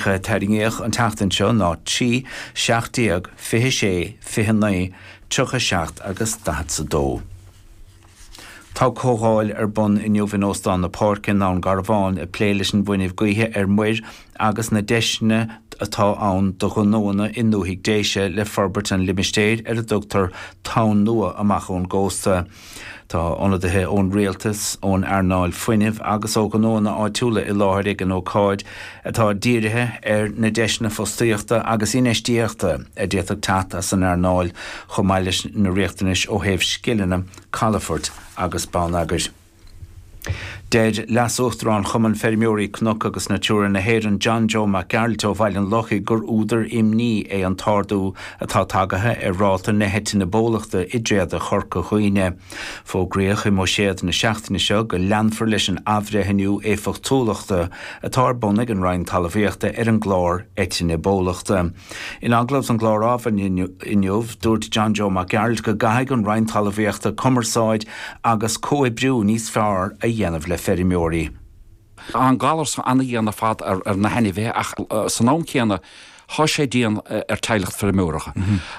tarraingíodh an tseachtain seo ná 3, 17, 26, 29, 37 agus 42. Tá comhdháil ar bun inniu in Óstán na Páirce i nDún Garbhán ag plé leis an bhfuinneamh gaoithe ar muir agus na deiseanna atá ann do ghnóanna i ndúthaigh Déise le forbairt sa limistéar ar a dtugtar Tonn Nua amach ón gcósta. Tá ionadaithe ón rialtas, ón earnáil fuinnimh agus ó ghnóanna áitiúla i láthair ag an ócáid atá dírithe ar na deiseanna fostaíochta agus infheistíochta a d'fhéadfadh teacht as an earnáil chomh maith leis na riachtanais ó thaobh scileanna, calafort agus bonneagair. Deir Leas-Uachtarán Chumann Feirmeoirí Cnoc agus Natura na hÉireann John Joe Mac Gearailt ó Bhaile an Lochaigh gur údar imní é an t-ardú atá tagaithe ar ráta na heitinne bólachta i dtréada Chorca Dhuibhne. Fógraíodh i mBuiséad na seachtaine seo go leanfar leis an athbhreithniú éifeachtúlachta atá ar bun ag an Roinn Talmhaíochta ar an gclár eitinne bólachta. In agallamh don gclár Adhmhaidin inniu, dúirt John Joe Mac Gearailt go gcaithfidh an Roinn Talmhaíochta cumarsáid agus comhoibriú níos fearr a dhéanamh le feirmeoirí. Tá an galar seo an-dhian ar fad ar na hainmhithe ach san am céanna thá sé dian ar teaghlach feirmeora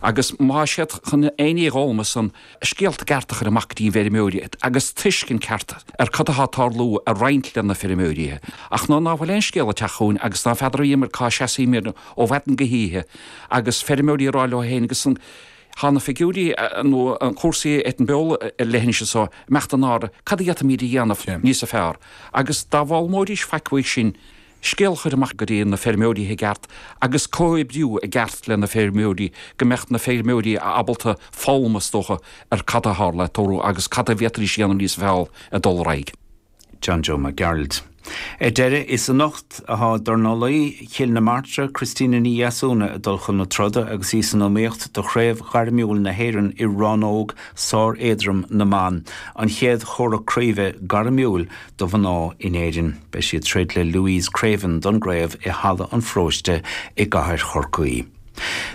agus má tá siad chun aon ní a fhoghlaim as an scéalta cearta a chur amach go dtí na feirmeoirí agus tuiscint ceart ar cad atá ag tarlú a roinnt le na feirmeoirí ach ná ná fuil aon scéal ag teacht chugainn agus ná feadramar cá seasaímid ar ó mhaidin go hoíche agus feirmeoirí ag rá leo féin agus thá na figiúirí nó an cúrsaí ag an beo le linn sin so imeacht an áir cad a d'fhéadfaimid a dhéanamh níos fearr agus ná foghlaimeoidís faic uaidh sin scéal a chur amach go dtí na feirmeoirí i gceart agus comhoibriú i gceart le na feirmeoirí go mbeadh na feirmeoirí ábalta foghlaim is dócha ar cad a tharla ag tórramh agus cad a fhéadfaidís a dhéanamh níos fearr ag dul ar aghaidh. John Joe Mac Gearailt. Ar deireadh, is anocht a thá dornálaí Chill na Martra, Christina Ní Dheasúna, ag dul chun na troda agus í san iomaíocht do Chraobh Ghairmiúil na hÉireann i rannóg sár-éadrom na mban, an chéad chomhrac craoibhe gairmiúil do mhná in Éirinn. Beidh sí ag troid le Louise Creaven don gcraobh i Halla an Pharóiste i gCathair Chorcaí.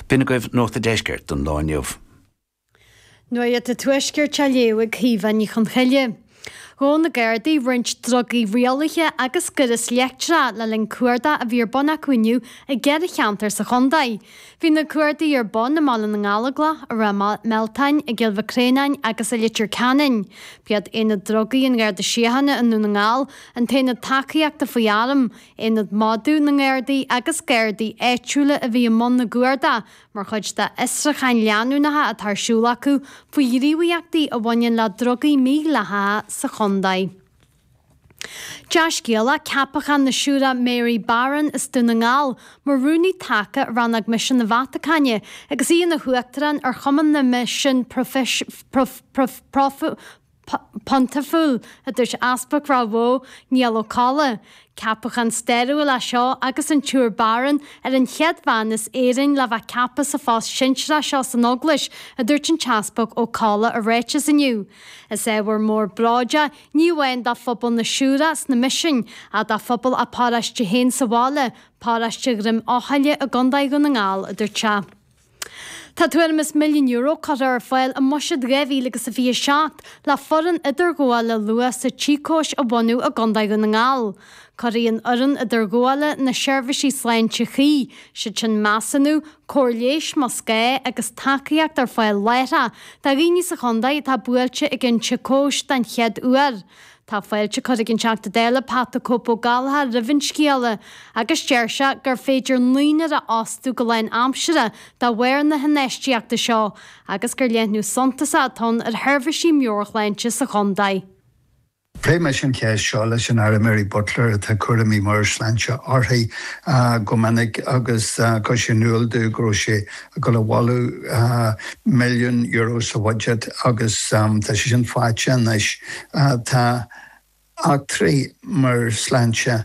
B'in agaibh Nuacht an Deiscirt don lá inniu. Nuacht an Tuaiscirt á léamh ag Caoimhe Ní Chonghaile. Ghabh na Gardaí roinnt drugaí rialaithe agus gaireas leictreach le linn cuardach a bhí ar bun acu inniu i gceithre cheantar sa chontae. Bhí na cuardaigh ar bun i mBaile na nGallóglach, i Ráth Mealtáin, i gCill Mhic Réanáin agus i Leitir Ceanainn. B'iad Aonad Drugaí an Gharda Síochána i nDún na nGall, an tAonad Tacaíochta faoi Airm, Aonad Madaidh na nGardaí agus Gardaí áitiúla a bhí i mbun na gcuardach mar chuid d'fhiosrucháin leanúnacha atá ar siúl acu faoi ghníomhaíochtaí a bhaineann le drugaí mídhleathacha sa chontae. Dea-scéala ceapachán na Siúire Mary Barron as Dún na nGall mar Rúnaí Taca ar Rannóg Misean na Vatacáine agus í ina hUachtarán ar Chumann na Misean Pontaifíúil, a dúirt Easpag Ráth Bhoth, Niall Ó Colla. Ceapachán stairiúil é seo agus an tSiúr Barron ar an chéad bhean as Éirinn le bheith ceaptha sa phost sinsearach seo san Eaglais, a dúirt an tEaspag Ó Colla i ráiteas inniu. Is ábhar mór bróid é ní amháin do phobal na Siúracha sna Misin ach do phobal a paróiste féin sa bhaile, paróiste Dhroim Eochaille i gContae Dhún na nGall, a dúirt sé. Tá tuairim is milliún euro curtha ar fáil i mbuiséad 2027 le foireann idirghabhála luath sa tsíocóis a bhunú i gContae Dhún na nGall. Cuirfidh an fhoireann idirghabhála, na seirbhísí sláinte chuí, is iad sin measúnú, cóir leighis más gá agus tacaíocht ar fáil láithreach do dhaoine sa chontae atá buailte ag an tsíocóis den chéad uair. Tá fáilte curtha ag an Teachta Dála Pat 'The Cope' Ó Gallchóir roimh an scéala agus deir sé gur féidir naonúr a fhostú go lánaimseartha dá bharr na hinfheistíochta seo agus gur leathnú suntasach atá ann ar sheirbhísí meabhairshláinte sa chontae. Phléigh mise an cheist seo leis an Aire Mary Butler atá cúraimí meabhairshláinte uirthi go minic agus chuir sí in iúl domh go raibh sí ag dul a mholadh milliún euro sa budget agus tá sé sin faighte anois. Tá deacrachtaí meabhairshláinte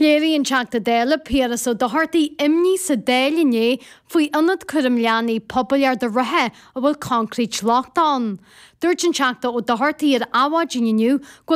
Léirigh an Teachta Dála Piaras Ó Dochartaigh imní sa Dáil inné faoi ionad cúraim leanaí pobail Ard an Rátha a bhfuil coincréit lochtach ann. Dúirt an Teachta Ó Dochartaigh ar Adhmhaidin inniu go bhfuil